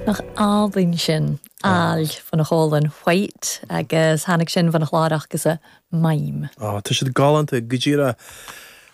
Nach álainn sin? Àill bhon a' chòmhlan Whyte, agus tháinig sin bhon a' chlàr acasan Maim. Ó, tá siad galánta, go díreach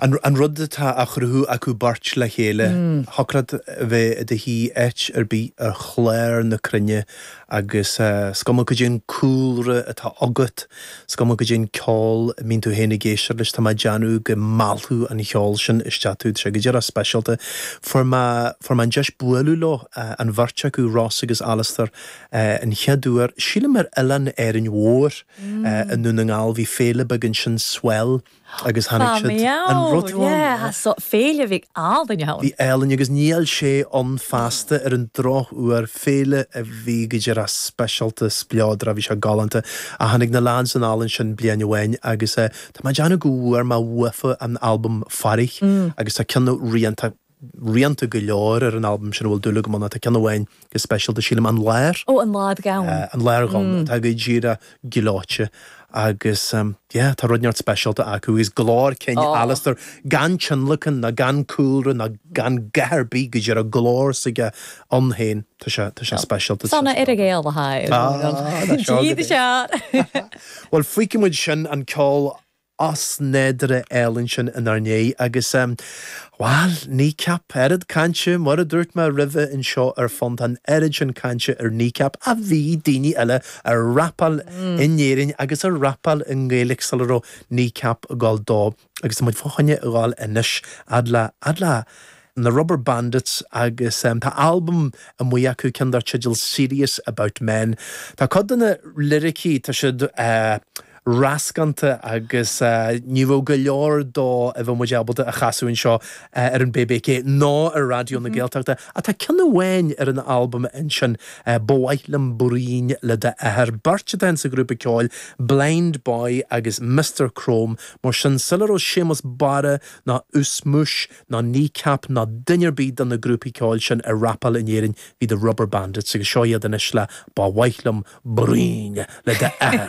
an rud atá á chruthú acu beirt le chéile. Thiocfadh leat a bheith i do shuí áit ar bith ar chlár na cruinne Agus is cuma cén cúlra atá agat, is cuma cén ceol a mbíonn tú féin ag éisteacht leis, tá mé ag déanamh go meallfadh an cheol sin isteach tú, tá sé go dearfa speisialta. Fuair mé, fuair mé an deis bualadh leo, an bheirt acu, Ross agus Alasdair, an chéad uair, sílim ar Oileán Árainn Mhór i nDún na nGall, bhí féile beag ansin, Swell, agus tháinig siad. An rud atá ann ná. Sea, so féile bhí ealaín ann. Bhí ealaín agus níl sé ann feasta ar an drochuair. Féile a bhí go dearfa speisialta, spleodar, bhí sé galánta. Ach tháinig na leaids chun an oileáin sin bliain amháin agus tá mé ag déanamh go bhfuair mé uafa an albam Fairich agus tá ceann de na rianta. rianta go leor ar an albam sin a bhfuil dúil agam iontu, tá ceann amháin go speisialta, sílim, 'An Láir'. Ó, 'An Làir Dhonn'. 'An Làir Dhonn', atá go díreach gleoite agus yeah, tá rud ineacht speisialta acu agus glór cinn Alasdair, gan tionlacan ná gan cúlra ná gan a dhath ar bith, go díreach glór s'aige ann féin, tá sé, tá sé speisialta. Tá an Earagail a haghaidh. Tá, tá seo agat é. Bhuel, fuígfidh muid sin, an ceol osnádúrtha álainn sin inár ndiaidh agus, bhuel, Kneecap, oiread cainte, mar a dúirt mé roimhe anseo ar fán, tá an oiread sin cainte ar Kneecap, ach bhí daoine eile ag rapáil in Éirinn agus ag rapáil i nGaeilge sula raibh Kneecap ag dul dó, agus tá muid fá choinne a dhul anois, a fhad le, a fhad le, na Rubberbandits agus tá albam amuigh acu, ceann dar teideal Serious About Men. Tá cuid de na liricí, tá siad rascánta agus ní raibh go leor dó a bheadh muid ábalta a chasadh anseo ar an BBC ná ar Raidió na Gaeltachta ach tá ceann amháin ar an albam, ansin, Ba Mhaith Liom Bruíon le d'Athair. Beirt atá insa ghrúpa ceoil, Blindboy agus Mister Chrome, mar sin sula raibh Séamas Barra ná Ushmush ná Kneecap ná duine ar bith de na grúpaí ceoil sin ag rapáil in Éirinn, bhí The Rubberbandits agus seo iad anois le Ba Mhaith Liom Bruíon le d'Athair.